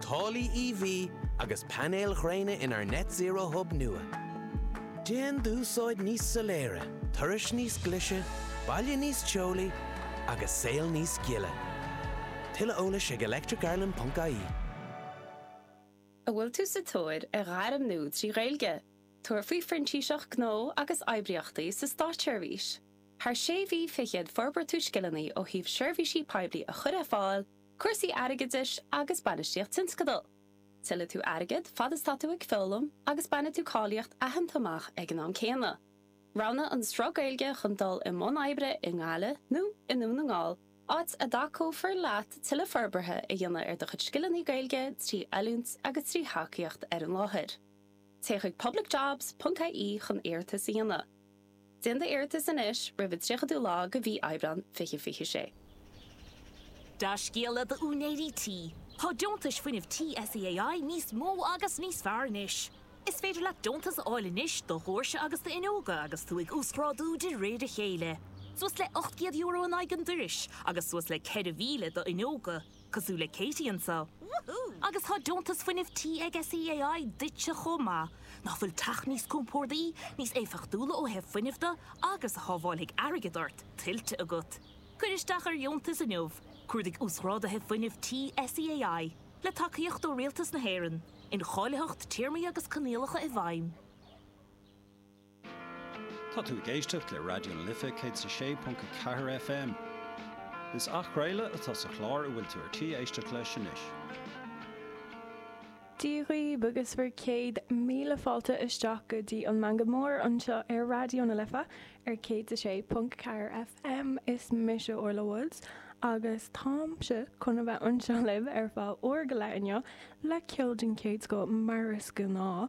Táille EV agus painéil ghréine inár Net Zero Hub nua. Déan d'úsáid níos soiléire, turais níos glise, baile níos teolaí agus saol níos gile. Tuilleadh eolais ag electric-ireland.ie. An bhfuil tú sa tóir ar ghairm nua trí Ghaeilge? Tabhair faoi Phrintíseacht Gnó agus Oibríochtaí sa Státseirbhís. Thar sé mhí fichead forbróidh tú scileanna ó thaobh seirbhísí poiblí a chur ar fáil, Cúrsaí airgeadais agus bainistíocht tionscadal. Tuillfidh tú airgead fad is tá tú ag foghlaim agus bainfidh tú cáilíocht aitheanta amach ag an am céanna. Roghnaigh an sruth Gaeilge chun dul i mbun oibre i nGaillimh nó i nDún na nGall, áit a dtacófar leat tuilleadh forbartha a dhéanamh ar do chuid scileanna Gaeilge trí oiliúint agus trí thacaíocht ar an láthair. Téigh chuig publicjobs.ie chun iarratas a dhéanamh. Déan d'iarratas anois roimh an 30ú lá de mhí Aibreán 2026. Dea-scéala d'úinéirí tí, tá deontais fuinnimh tí SEAI níos mó agus níos fearr anois. Is féidir leat deontas a fháil anois do dhóirse agus d'fhuinneoga agus tú ag uasghrádú de réir a chéile, suas le €800 in aghaidh an dorais agus suas le €4,000 d'fhuinneoga. cosúil le Katie anso. Agus tá deontas fuinnimh tí ag SEAI duitse chomh maith. Nach bhfuil teach níos compordaí, níos éifeachtúla ó thaobh fuinnimh de agus a shábháilfidh airgead ort tuillte agat. Cuir isteach ar dheontas inniu. Cuardaigh uasghrádaithe fuinnimh tí SEAI, le tacaíocht ó Rialtas na hÉireann, incháilitheacht téarmaí agus coinníollacha i bhfeidhm. Tá tú ag éisteacht le Raidió na Life 106.4 FM. Is athchraoladh atá sa chlár a bhfuil tú ar tí éisteacht leis anois. Dia dhaoibh agus bhur céad míle fáilte isteach go dtí an Meangadh Mór anseo ar Raidió na Life ar 106.4 FM. Is mise Orla Woods agus táimse chun a bheith anseo libh ar feadh uair go leith inniu le ceol den chéad scoth mar is gnáth.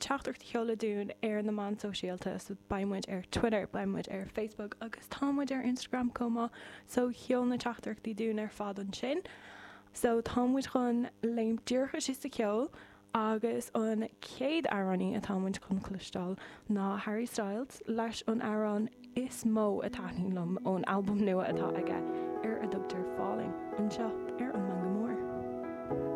teachtaireacht a sheoladh dúinn ar na meáin sóisialta so beidh muid ar Twitter, beidh muid ar Facebook agus tá muid ar Instagram chomh maith so seol na teachtaireachtaí dúinn ar fad ansin. So tá muid chun léim díreach isteach sa cheol agus an chéad amhránaí atá muid chun cloisteáil ná Harry Styles leis an amhrán is mó a taitníonn liom ón albam nua atá aige ar a dtugtar Falling anseo ar an Meangadh Mór.